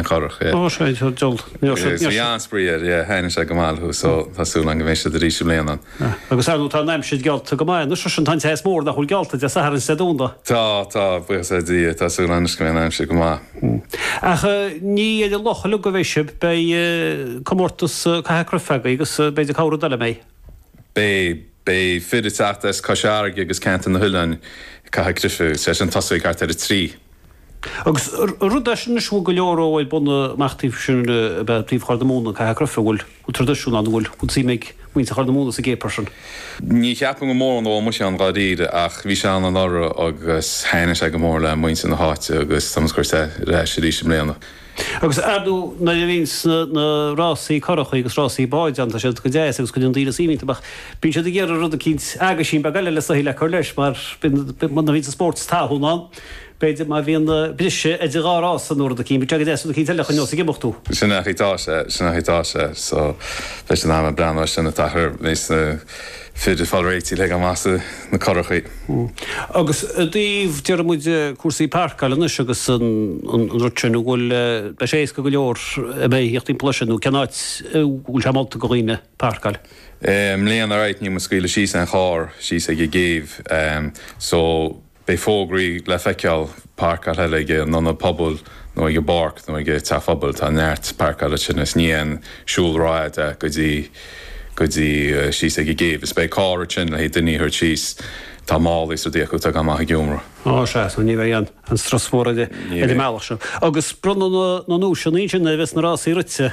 corrach, yeah. Ó, seo iad dul. Níor seo. Bhí an-spraoi air, yeah, thaitnigh sé go maith leo so tá súil agam go mbeidh siad arís i mbliana. Agus ar ndóigh tá an aimsir geallta go maith anois, sin, tá an teas mór nach bhfuil geallta Dé Sathairn is Dé Domhnaigh. Tá, tá, buíochas le Dia, tá súil anois go mbeidh an aimsir go maith. Ach ní ar an loch uilig a bheidh sibh, beidh comórtas caitheamh cruife agaibh agus b'fhéidir cabhair an Daileadh Méith. Beidh, beidh fir ag teacht as Cois Fharraige agus Ceantar na nOileán, caitheamh cruife, sé sin ag tosú thart ar a trí. Agus rud eicínt anois, an bhfuil go leor ó ag bunadh amach taobh sin le bheith taobh Chorr na Móna, caitheamh cruife, an bhfuil an tradisiún ann, an bhfuil an tsuim ag muintir Chorr na Móna sa gcéipear sin? Ní cheapaim go mórán ó muise ann dháiríre ach bhí sé ann anuraidh agus thaitnigh sé go mór le muintir na háite agus tá muid á chur ar ais arís i mbliana. Agus ar ndóigh nuair a bhíonns na rásaí currachaí agus rásaí báid ann, tá siad go deas agus cuireann daoine suim iontu ach bíonn siad ag iarraidh rud eicínt, aguisín beag eile le soithigh le cur leis mar bíonn, muna bhíonns an spórt is tathún ann. B'fhéidir má bhíonn na briseadh idir dhá rás san uair an chinn, b'fhéidir agus é sin an cinnte le dhuine os ag imeacht thú. Sin an chaoi atá sé, sin an chaoi atá sé. So, beidh siad in ann breathnú ar sin, a fhad is atá na fir ag fáil réitigh le ghoil amach sna curachaí. Agus i dtaobh, déarfaidh muid, cúrsaí páirceáil anois agus an rud sin, an bhfuil, beidh sé éasca go leor a bheith ag theacht timpeall leis sin nó cén áit a bhfuil sé molta go dhaoine páirceáil? I mbliana, right, níl muid ag scaoileadh síos aon charr, síos ag an gcéibh. So, Beidh fógraí le feiceáil páirceáil ag an ionad pobail nó ag an bpáirc nó ag teach an phobail. Tá neart páirceáil ansin is ní aon siúl rófhada é go dtí go dtí síos ag an gcéibh. Is beidh carr thart ansin le haghaidh duine a thabhairt síos. Tá málaí is rudaí acu atá ag goil amach ag iomramh. Ó sea, so ní bheidh aon strus mór ar an mbealach seo. Agus bronnadh na nduaiseanna ansin nuair a bheas na rásaí rite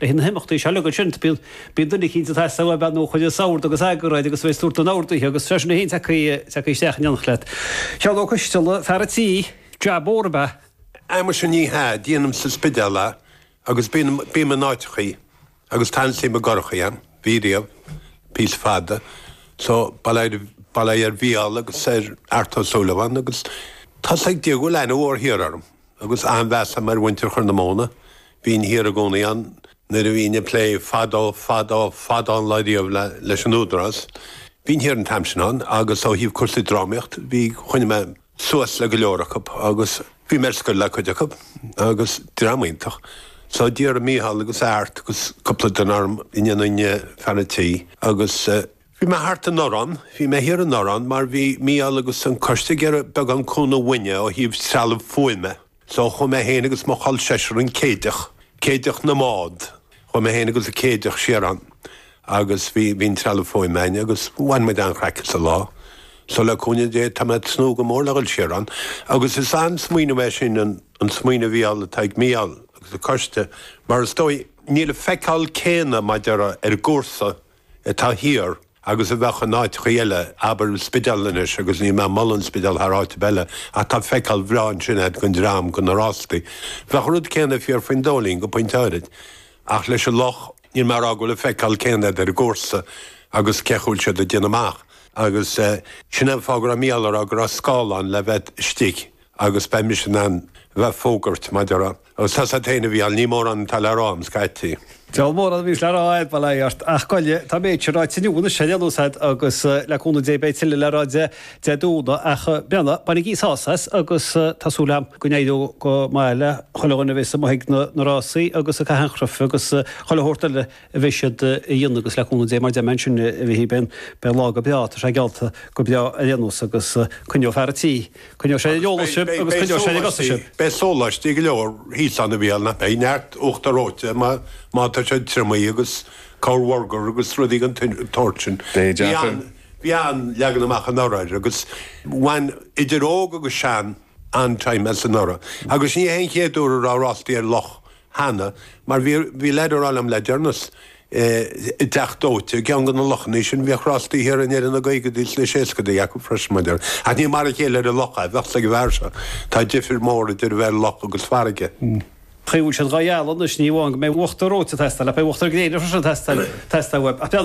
Le haghaidh na himeachtaí seo uilig ansin bíonn bíonn duine eicínt atá sásta a bheith nó chuile shórt agus eagar air agus tar éis tabhairt don abhar duithe agus freisin eicínt tagtha tagtha isteach in éineacht leat. Seán Ó Coistealla, fear an tí, jab mór ab ea. Á muise ní hea, déanaim sa Spidéal é agus bíonn bím in áiteachaí agus tá an-suim i gcurachaí a'm ariamh píosa fada so ba le ba le ar Mhícheál agus ar Art Ó Súilleabháin agus tá a fhios ag Dia go bhfuil aithne mhór thiar orm. agus an-mheas a'm ar mhuintir Chorr na Móna. Bhínn thiar i gcónaí ann nuair a bhínn ag plé fadó, fadó, fadó an lá riamh leis an Údarás. Bhínn thiar an t-am sin ann agus ó thaobh cúrsaí drámaíocht bhí, choinnigh mé suas le go leor acu agus bhí mé ar scoil le cuid acu agus dream iontach. So d'iarr Micheál agus Art agus cúpla duine orm an ndéanfainn fear an tí, agus eh, Bhí mé thart anuraidh ann, bhí mé thiar anuraidh ann mar bhí Mícheál agus an coiste ag iarraidh beagán cúnamh uainne ó thaobh trealamh fuaime so chuaigh mé féin agus mo chol seisear an Céideach, Céideach na mbád, chuaigh mé féin agus an Céideach siar ann agus bhí an trealamh fuaime againn agus bhain muid an-chraic as an lá. So le cúnamh Dé tá mé ag tnúth go mór le dhul siar ann agus is an-smaoineamh é sin, an smaoineamh fhial atá ag Mícheál agus an coiste mar is dóigh níl an feiceáil céanna b'fhéidir ar an gcúrsa, atá thiar agus a bheadh in áiteachaí eile, abair an Spidéal anois agus níl mé ag moladh an Spidéal thar áit ar bith eile ach tá feiceáil bhreá ansin ag an dream go na rástaí, bheadh an rud céanna fíor faoin Dóilín go pointe áirid ach leis an loch, níl mé ag rá go bhfuil an feiceáil céanna agat ar an gcúrsa agus cén chaoi a bhfuil siad ag déanamh amach agus sin an fáth go raibh Mícheál ag rá go raibh scáileán le bheith istigh agus beidh mise in ann a bheith ag fógairt maidir. Agus tá 's a'd féin a Mhícheáil, ní mórán atá le rá a'm scaití. Diabhal mórán a bhíos le rá a'd bail ort, ach goile, tá an méid sin ráite inniu anois ar aon nós a'd agus le cúnamh Dé beidh tuilleadh le rá a'd Dé Domhnaigh ach b'fhionna, bainigí sásamh as agus tá súil a'm go n-éireoidh go maith le chuile dhuine a bheas amuigh ag na rásaí agus ag caitheamh an chruif agus chuile shórt eile. a bheidh siad a dhéanamh agus le cúnamh Dé mar deirim ansin a bheidh siad féin, beidh an lá go breá, tá sé geallta go breá ar aon nós agus coinneoidh fear an tí, coinneoidh sé ar an eolas sibh agus coinneoidh sé ar bhur gcosa sibh. Beidh sóláistí go leor thíos ann a Mhícheáil, nach mbeidh? Neart uachtar reoite má tá sé triomaithe agus corr bhurgar agus rudaí den tsórt sin. Beidh, deacair. Bhí an-leagan amach anuraidh air agus bhain idir óg agus sean an-time as anuraidh agus ní hé an chéad uair a raibh rástaí ar loch cheana, mar bhí, bhí leaid ag rá liom le deireanas i dTeach Dóite i gceann de na lochanna ansin, bhíodh rástaí thiar i ndeireadh na gcaogadaí is na seascadaí acu freisin, b'fhéidir. Ach ní mar a chéile ar an loch é, bheadh 's ag an bhfear seo. Tá difir mhór idir a bheith ar loch agus farraige. Gheobhaidh siad dhá dhealbh anois, ní amháin go mbeidh uachtar reoite ag teastáil ach beidh uachtar gréine freisin ag teastáil, teastáil uaibh. Ach beidh an.